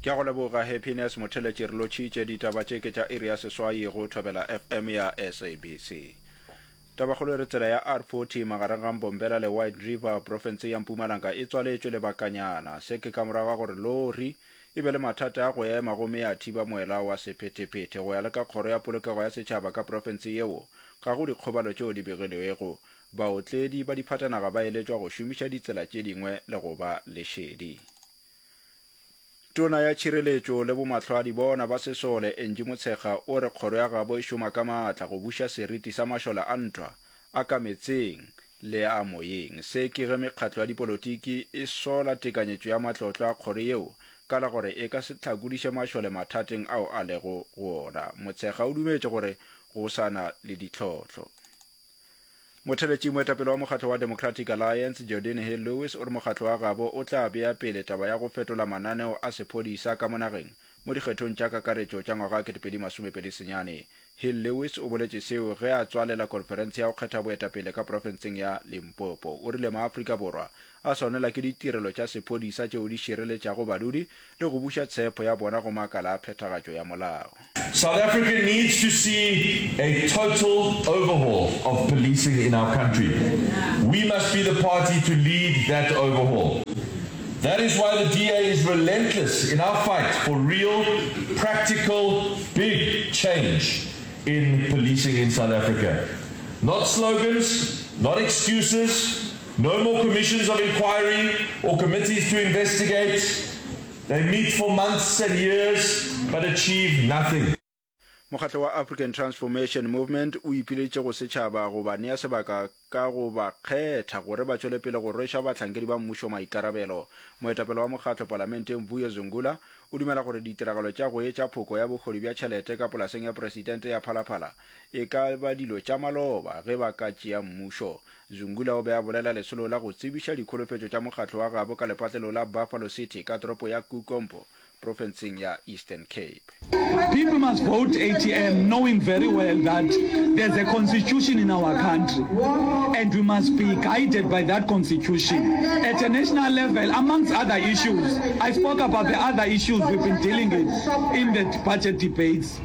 Ke a go leboga Happiness Motheletši re lotšhitše ditaba tše ke tša iri ya seswai go Thobela FM ya SABC. Tabakgolo e re tsela ya R40 magareng ga Mbombela le White River profense ya Mpumalanga e tswaletšwe lebakanyana. Se ke ka morago ga gore lori e be le mathata a go ema gomme ya thiba moela wa sephethephethe. Go ya le ka kgoro ya polokego ya setšhaba ka profense yeo ga go dikgobalo tšeo di begilwego. Baotledi ba diphatanaga ba eletšwa go šomiša ditsela tše dingwe le go ba lešedi. Tona ya Tšhireletšo le Bomahlwadi bona ba Sesole, Angie Motshekga o re kgoro ya gabo e šoma ka maatla go buša seriti sa mašole a ntwa, a ka metseng le a moyeng. Se ke ge mekgatlo ya dipolotiki e sola tekanyetšo ya matlotlo a kgoro yeo ka la gore e ka se hlakodiše mašole mathateng ao a lego go ona. Motshekga o dumetše gore go sa na le ditlhohlo. Motheletši moetapele wa mokgatlo wa Democratic Alliance, Jordine Hill Lewis o re mokgatlo wa gabo o tla bea pele taba ya go fetola mananeo a sephodisa ka mo nageng mo dikgethong tša kakaretšo tša ngwaga 2020 senyane. Hill Lewis o boletše seo ge a tswalela konferense ya go kgetha boetapele ka profenseng ya Limpopo. O rile Maafrika Borwa a swanela ke ditirelo tša sephodisa tšeo di šireletšago badudi le go buša tshepho ya bona go makala a phethagatšo ya molao. South Africa needs to see a total overhaul of policing in our country. We must be the party to lead that overhaul. That is why the DA is relentless in our fight for real, practical, big change in policing in South Africa. Not slogans, not excuses, No more commissions of inquiry or committees to investigate, they meet for months and years but achieve nothing. Mokgatlo wa African Transformation Movement o ipiletše go setšhaba go ba nea sebaka ka go ba kgetha gore ba tšwele pele go rweša bahlankedi ba mmušo maikarabelo. Moetapele wa mokgatlo palamenteng Vuyo Zungula o dumela gore ditiragalo tša go etša phoko ya bohodi bja tšhelete ka polaseng ya presidente ya Phalaphala e ka ba dilo tša maloba ge ba ka tšea mmušo Zungula o be a bolela lesolo la go tsebiša dikholofetšo tša mokgatlo wa gabo ka lepatlelo la Buffalo City ka toropo ya Kukompo, profenseng ya Eastern Cape. People must vote ATM knowing very well that there's a constitution in our country and we must be guided by that constitution at a national level amongst other issues. I spoke about the other issues we've been dealing with in the budget debates.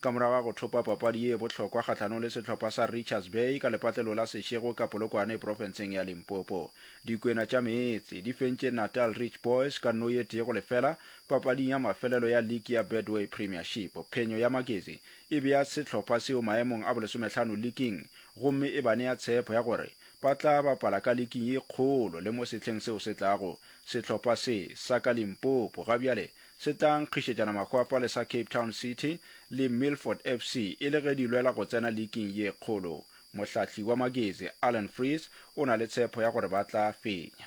Ka morago ga go thopa papadi ye bohlokwa kgahlanong le sehlopha sa Richards Bay ka lepatlelo la Seshego ka Polokwane profenseng ya Limpopo, Dikwena tša Meetse di fentše Natal Rich Boys ka no ye tee go lefela papading ya mafelelo ya liki ya Betway Premiership. Phenyo ya Maketsi e bea sehlopha seo maemong a bolesomehlano liking gomme e ba nea tshepo ya gore ba tla bapala ka liking ye kgolo le mo sehleng seo se tlago. Sehlopha se sa ka Limpopo gabjale se tla nkgišetšana mahwapa le sa Cape Town City le Milford FC e le ge di lwela go tsena liking ye kgolo. Mohlahli wa magezi Alan Freese o na le tshepho ya gore ba tla fenya.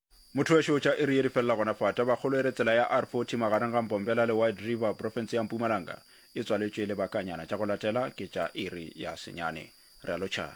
Motho wešo o tša iri ye di felela gona fa. Tabakgolo e re tsela ya R40 magareng ga Mbombela le Wide River, profense ya Mpumalanga, e tswaletšwe lebakanyana. Tša go latela ke tša iri ya senyane. Re a lotšhana.